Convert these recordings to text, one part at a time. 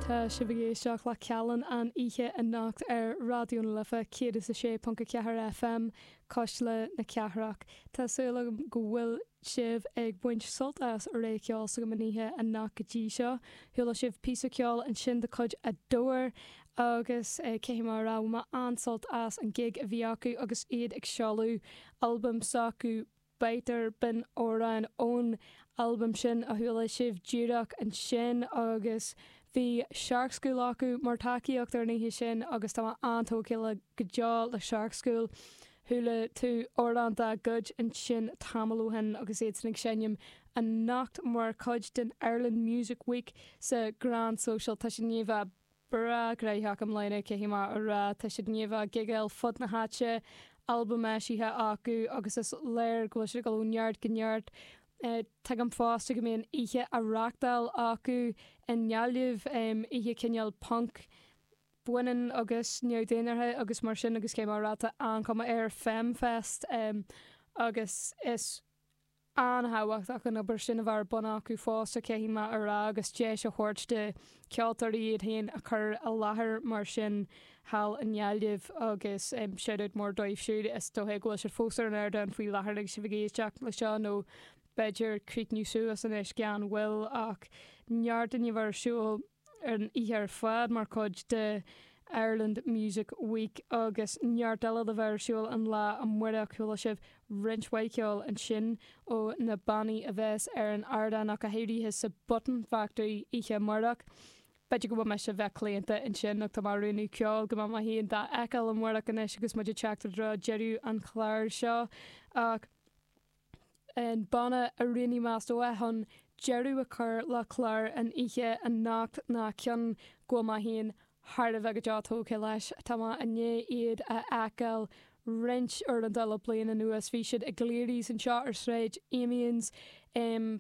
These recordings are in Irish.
Tá sibh ag éisteacht le Ceallan an oíche anocht ar Raidió na Life 106.4 FM, cuisle na cathrach. Tá súil agam go bhfuil sibh ag baint sult as rogha ceoil s'agam an oíche anocht go dtí seo. Chuala sibh píosa ceoil ansin de chuid Adore agus caithfidh mé a rá bhain mé an-sult as an gig a bhí acu agus iad ag seoladh albaim s'acu, Biter, b'in amhrán ón albam sin a chuala sibh díreach ansin agus bhí Shark School acu mar tacaíocht ar an oíche sin agus tá mé an-tógtha le go deo le Shark School. Chuala tú amhrán dá gcuid ansin tamall ó shin agus iadsan ag seinm anocht mar chuid den Ireland Music Week sa Grand Social. Tá siad i ndiaidh a bheith breá graitheach i mbliana caithfidh mé a rá. Tá siad i ndiaidh a bheith ag gigeáil fud na háite, albaim eisithe acu agus is léir go bhfuil siad ag dul ó neart go neart. Tuigim fosta go mbíonn oíche á reachtáil acu i nGaillimh, oíche cineál punc, baineann agus neamh-dhénártha agus mar sin agus caithfidh mé a rá tá an-chuma air, Femme Fest, agus is. an-thábhachtach an obair sin a bheith ar bun acu fosta, caithfidh mé a rá, agus deis a thabhairt do cheoltóirí iad féin a chur i láthair mar sin thall i nGaillimh agus shout-out mór dóibh siúd, is dócha go bhfuil siad fós ar an ardán faoi láthair agus sibh ag éisteacht leis seo nó b'fhéidir críochnú suas anois gan mhoill ach neart i ndiaidh a bheith ar siúl. ar an oíche ar fad mar chuid de Ireland Music Week agus neart eile le bheith ar siúl an lá amáireach. Chuala sibh roinnt mhaith ceoil ansin ó na bannaí a bheas ar an ardán ach go háirithe sa Button Factory oíche amáireach. B'fhéidir go bhfuil mise a bheith claonta ansin ach tá mé ag roghnú ceoil go mbeidh mé fhéin dá fheiceáil amáireach anois agus muid ag teacht i dtreo deireadh an chláir seo ach an banna a roghnaigh mé is dócha chun deireadh a chur le clár an oíche anocht ná ceann go bhfuil mé féin thar a bheith go deo tógtha leis, tá mé i ndiaidh iad a fheiceáil roinnt uaireanta le bliain anuas. Bhí siad i gClearys anseo ar Shráid Amiens um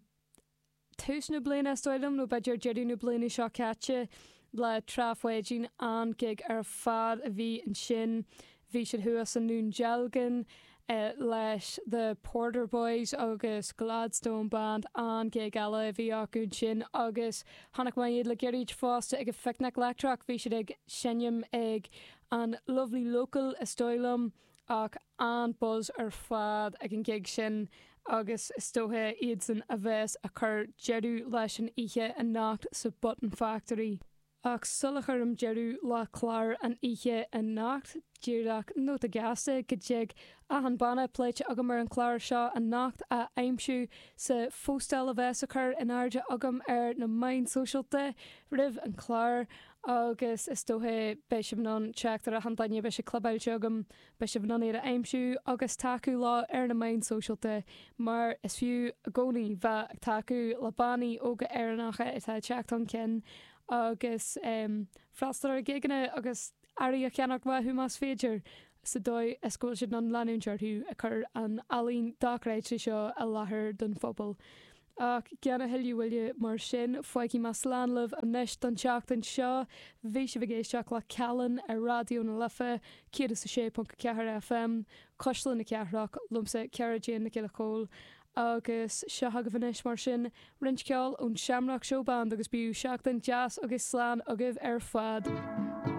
tús na bliana is dóigh liom, nó b'fhéidir deireadh na bliana seo caite le Trá Pháidín, an-ghig ar fad a bhí ansin. Bhí siad thuas i nDún Dealgan leis The Porter Boys agus Gladstone Band, an-ghig eile a bhí acu ansin agus chonaic mé iad le gairid fosta ag an Phicnic Leictreach, bhí siad ag seinm ag an Lovely Local is dóigh liom ach. an-buzz ar fad ag an ngig sin agus is dócha iadsan a bheas a chur deireadh leis an oíche anocht sa Button Factory. Ach sul a chuirim deireadh le clár an oíche anocht, díreach nóta gasta, go dtig achan banna pléite agam ar an chlár seo anocht a aimsiú sa phóstáil a bheas a chur in airde agam ar na meáin sóisialta roimh an chlár agus is dócha beidh sibh in ann teacht ar achan duine a bheas clibeáilte agam Beidh sibh in ann iad a aimsiú agus tacú leo ar na meáin sóisialta, mar is fiú i gcónaí bheith ag tacú le bannaí óga Éireannacha atá ag teacht chun cinn agus freastal ar ghigeanna agus earraí a cheannach uathu más féidir, sa dóigh is go bhfuil siad in ann leanúint orthu ag cur an ealaín dochreidte seo i láthair don phobal. Ach gan a thuilleadh moille mar sin, fágfaidh mé slán agaibh anois don tseachtain seo. Bhí sibh ag éisteacht le Callan ar Raidió na Life 106.4 FM, Cuisle na Cathrach, liomsa, Ciara Jane Nic Giolla Chomhaill, agus seo agaibh anois mar sin roinnt ceoil ón Shamrock Showband agus bíodh seachtain deas agus slán agaibh ar fad!